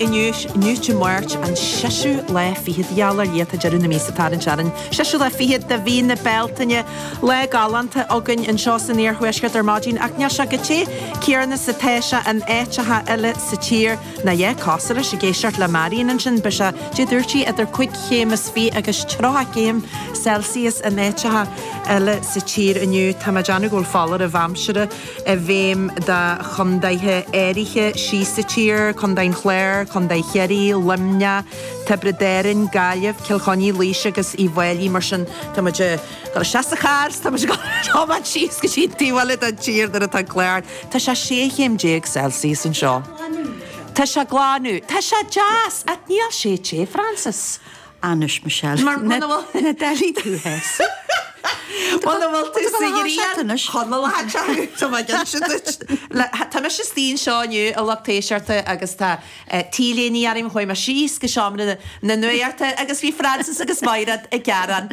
Inniu, inniu Dé Máirt, an seiseadh lá fichead, gheall ar Dhia, tá deireadh na míosa ag tarraingt orainn, an seiseadh lá fichead de mhí na Bealtaine. Lá galánta againn anseo san iarthuaisceart ar maidin, ach níl sé chomh te céanna is atá sé in áiteacha eile sa tír, nó de réir cosúlachta ag éisteacht le Marian ansin, beidh sé, caidé a dúirt sí, idir cúig chéim is fiche agus tríocha céim Celsius in áiteacha eile sa tír inniu. Tá mé ag déanamh go bhfuil foláireamh aimsire. i bhfeidhm do chontaetha áirithe síos sa tír, Contae an Chláir, Contae Chiarraí, Luimneach, Tiobraid Árann, Gaillimh, Cill Chainnigh, Laois agus Uíbh Fhailí. Mar sin, tá muid ag dul isteach sa charr 's tá muid ag tiomáint síos go dtí an taobh eile den tír nuair atá an clár. Tá sé 16 chéim Celsius anseo. Tá sé glan anseo. Tá sé glan anseo. Tá sé deas. Ach níl sé te, Frances. Anois, Michelle, muna bhfuil na dtailí tú theas. Muna bhfuil tú sa ghrian, Conall, a thag sé thú, tá mé ag inse duit. Le, tá mise istigh anseo inniu a lucht éisteachta agus tá T-léine orm, chuaigh mé síos go seomra na nuachta agus bhí Frances agus Máire ag gearán.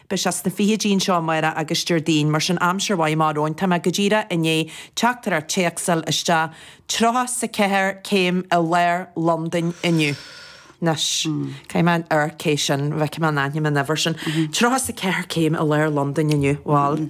Beidh sé sna fichidí anseo, amárach agus Déardaoin, mar sin aimsir mhaith amach romhainn. Tá mé go díreach i ndiaidh teachtaireacht téacs a fháil isteach, tríocha is a ceathair céim i lár Londain inniu. Anois, caithfidh mé amharc cé sin, go bhfeicfidh mé an aithním an uimhir sin. Tríocha is a ceathair céim i lár Londain inniu. Bhal,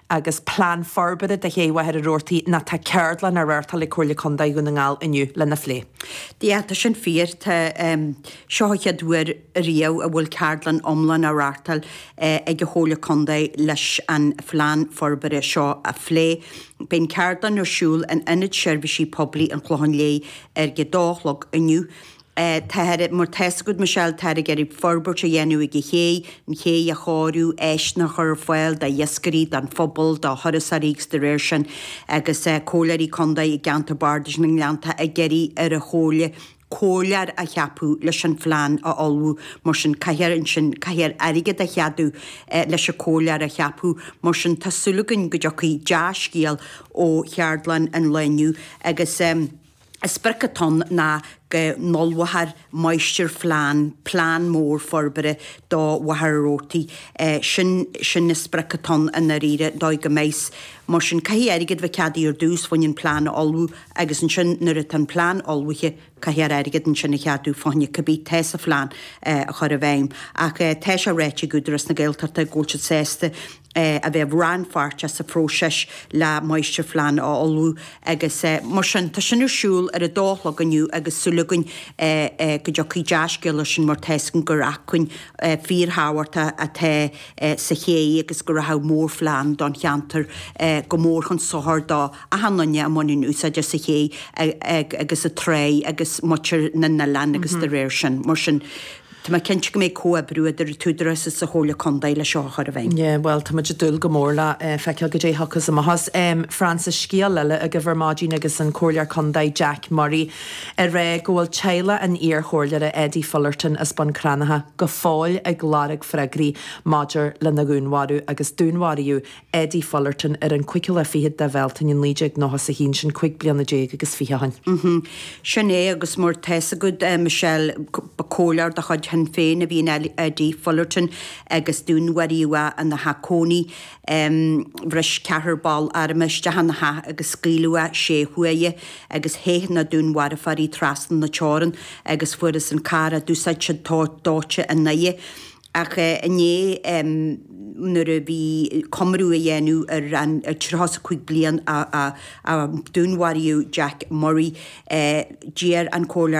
agus plean forbartha do Ché Mhachaire Rabhartaigh nó tá ceardlann á reáchtáil ag Comhairle Contae Dhún na nGall inniu lena phlé. Sea, tá sin fíor. Seo an chéad uair riamh a bhfuil ceardlann iomlán á reáchtáil ag an Chomhairle Contae leis an phlean forbartha seo a phlé. Beidh an ceardlann ar siúl in Ionad Seirbhísí Poiblí an Chlocháin Léith ar a 2 a chlog inniu. Táthar mar tá a fhios agat, Michelle, táthar ag iarraidh forbairt a dhéanamh ag an ché, an ché a chóiriú, áiseanna a chur ar fáil d'iascairí, don phobal, do thurasóirí agus de réir sin agus Comhairleoirí Contae i gceantar Bardais na nGleanntach ag iarraidh ar an Chomhairle comhairleoir a cheapadh leis an phlean a ullmhú. Mar sin caithfear ansin caithfear airgead a cheadú leis an comhairleoir a cheapadh. Mar sin tá súil againn go dtiocfaidh dea-scéal ó cheardlann an lae inniu agus. Is é an sprioc atá ann ná go n-ullmhófar máistirphlean, plean mór forbartha do Mhachaire Rabhartaigh. Sin, sin an sprioc atá ann i ndáiríre, dóigh go mbeidh. Mar sin, caithfidh airgead bheith ceadaithe ar dtús fá choinne an plean a ullmhú agus ansin, nuair atá an plean ullmhaithe, caithfear airgead ansin a cheadú fá choinne cibé atá sa phlean a chur i bhfeidhm. Ach tá sé ráite ag Údarás na Gaeltachta go bhfuil siad sásta a bheith rannpháirteach sa phróiseas le máistirphlean a ullmhú agus mar sin tá sin ar siúl ar a dó a chlog inniu agus súil againn go dtiocfaidh dea-scéala as sin mar tá fhios againn gur acmhainn fíorthábhachtach atá sa ché agus go rachadh mórphlean don cheantar go mór chun sochair do achan duine a bhaineann úsáid as an ché agus an tráigh agus muintir na n-oileán agus de réir sin mar sin Tá mé cinnte go mbeidh comhoibriú idir an tÚdarás is an Chomhairle Contae leis seo a chur i bhfeidhm. Yeah, bhuel, tá muid ag dúil go mór le feiceáil go dté a thiocfas amach as. Frances, scéal eile agaibh ar maidin agus an Comhairleoir Contae Jack Murray ag rá go bhfuil teaghlach an iar-chomhairleora Eddie Fullerton as Bun Cranncha go fóill ag lorg freagraí maidir lena dhúnmharú agus dúnmharaíodh Eddie Fullerton ar an chúigiú lá fichead de Bhealtaine 1991 sin cuig bliana déag agus fiche ó shin. Sin é agus mar tá a fhios agat, a Michelle. Ba comhairleoir de chuid Shinn Féin a bhí in Eddie Fullerton agus dúnmharaíodh é ina theach cónaí. Bhris ceathrar faoi airm isteach ina theach agus scaoileadh é sé huaire agus theith na dúnmharfóirí trasna na teorann agus fuarthas an carr a d'úsáid siad dóite ina dhiaidh. ach inné, nuair a bhí comóradh á dhéanamh ar an 35 bliain ó dúnmharaíodh Jack Murray, d'iarr an Comhairleoir